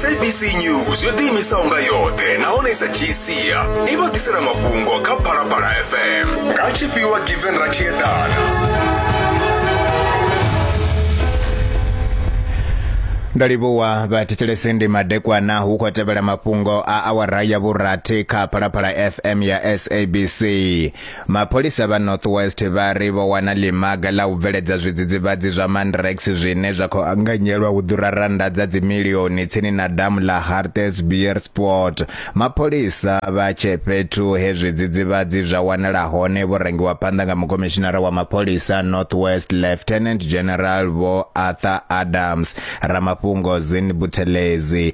sabc news yo ḓiimisaho nga yoṱhe nahone i sa dzhii sia i vha ḓisela mafhungo kha phalaphala fm nga tshifhiwa given ratshiedana ndo livhuwa vhathetshelesi ndi madekwana hu khou tevhela mafhungo a awara ya vhurathi kha phalaphala fm ya sabc Mapholisa vha North West vha ri vho wana ḽimaga ḽa u bveledza zwidzidzivhadzi zwa Mandrax zwine zwa khou anganyelwa u ḓura rannda dza dzimilioni tsini na damu ḽa Hartbeespoort. Mapholisa vha tshe fhethu he zwidzidzivhadzi zwa wanala hone vho rangiwa phanḓa nga mukomishinara wa mapholisa North West Lieutenant General Vho Arthur Adams, ramafhungo Zin Buthelezi.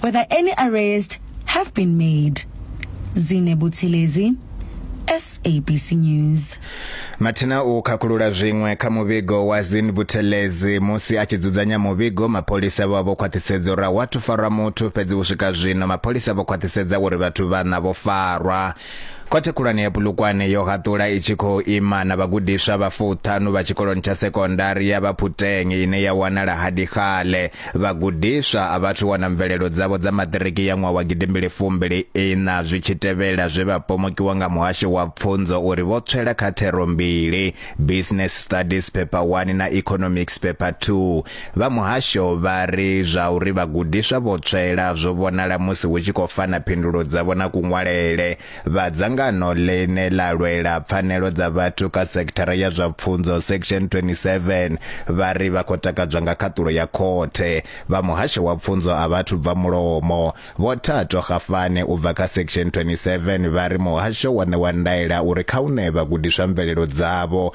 whether any arrest have been made. Zine Buthelezi, SABC News. Mathina u khakhulula zwiṅwe kha muvhigo wa Zin Buthelezi musi a tshi dzudzanya muvhigo mapholisa vha vho khwaṱhisedza uri wa thu farwa muthu fhedzi u swika zwino mapholisa vho khwaṱhisedza uri vhathu vhana vho farwa khothe khulwane ya Pulukwane yo haṱula i tshi khou ima na vhagudiswa vha fuṱhanu vha tshikoloni tsha sekondari ya Vhaphutenge ine ya wanala Hadikgale Vhagudiswa a vha athu wana mvelelo dzavho dza maṱiriki ya ṅwaha wa gidimbili fumbili iṋa zwi tshi tevhela zwe vha pomokiwa nga muhasho wa pfunzo uri vho tswela kha thero mbili, Business Studies Paper 1 na Economics Paper 2. Vha muhasho vha ri zwa uri vhagudiswa vho tswela zwo vhonala musi hu tshi khou fana phindulo dzavho na kuṅwalele. Vha dzangano ḽine ḽa lwela pfanelo dza vhathu kha sekithara ya zwa pfunzo section 27 vha ri vha khou takadzwa nga khaṱulo ya khothe. Vha muhasho wa pfunzo a vhathu bva mulomo. Vho Thato Gafane u bva kha section 27 vha ri muhasho wa ṋewa ndaela uri kha u ṋee vhagudiswa mvelelo dzavho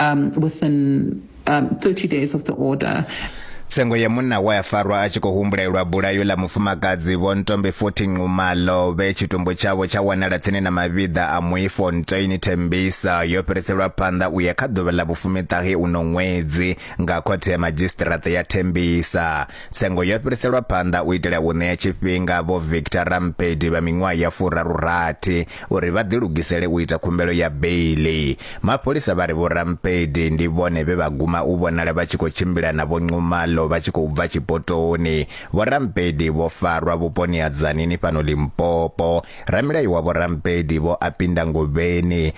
um, within um, 30 days of the order. tsengo ya munna wa ya farwa a tshi khou humbulelwa bulayo ḽa mufumakadzi vho ntombe 14 nxumalo vhe tshitumbu tshavho tsha wanala tsini na mavhiḓa a muifontein thembisa yo fhiriselwa phanḓa u ya kha ḓuvha ḽa vhufumiṱahe uno ṅwedzi nga khothe ya madzhisiṱiraṱa ya thembisa Tsengo yo fhiriselwa phanḓa u itela u ṋea tshifhinga vho Victor Rampedi vha miṅwaha ya furaru-rathi uri vha ḓilugisele u ita khumbelo ya beiḽi. Mapholisa vha ri vho Rampedi ndi vhone vhe vha guma u vhonala vha tshi khou tshimbila na vho Nxumalo vha tshi khou bva tshipotoni. Vho Rampedi vho farwa vhuponi ha Tzaneen fhano Limpopo. Ramilayo wa vho Rampedi, Vho Apinda Ngobeni,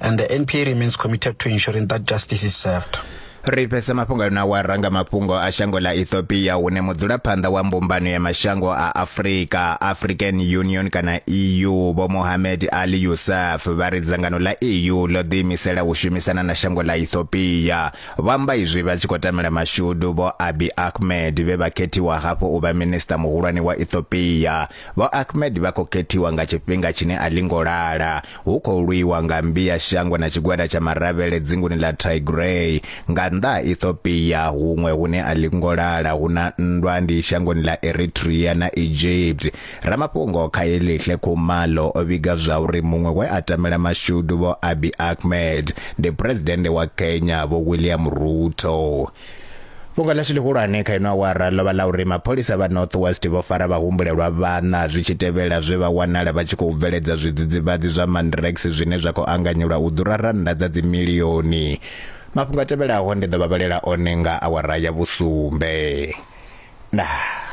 And the NPA remains committed to ensuring that justice is served. ri fhesa mafhungo ano a wa ranga mafhungo a shango ḽa ethiopia hune mudzulaphanḓa wa mbumbano ya mashango a afurika african union kana eu vho mohamed ali yusuf vha ri dzangano ḽa eu ḽo ḓiimisela u shumisana na shango ḽa ethiopia vho amba izwi vha tshi khou tamela mashudu vho abi ahmed vhe vha khethiwa hafhu u vha minista muhulwane wa ethiopia Vho Ahmed vha khou khethiwa nga tshifhinga tshine a ḽi ngo lala hu khou lwiwa nga mmbi ya shango na tshigwada tsha maravhele dzinguni ḽa Tigray. Nga nnḓa ha Ethiopia, huṅwe hune a ḽi ngo lala hu na nndwa ndi shangoni ḽa Eritrea na Egypt. Ramafhungo Khaelihle Khumalo o vhiga zwauri muṅwe we a tamela mashudu Vho Abiy Ahmed ndi Phresidennde wa Kenya Vho William Ruto. Fhungo ḽashu ḽihulwane kha ino awara ḽo vha ḽa uri mapholisa vha North West vho fara vhahumbulelwa vhaṋa zwi tshi tevhela zwe vha wanala vha tshi khou bveledza zwidzidzivhadzi zwa Mandrax zwine zwa khou anganyelwa u ḓura rannda dza dzimilioni. Mafhungo a tevhelaho ndi ḓo vha vhalela one nga awara ya vhusumbe. Ndaa.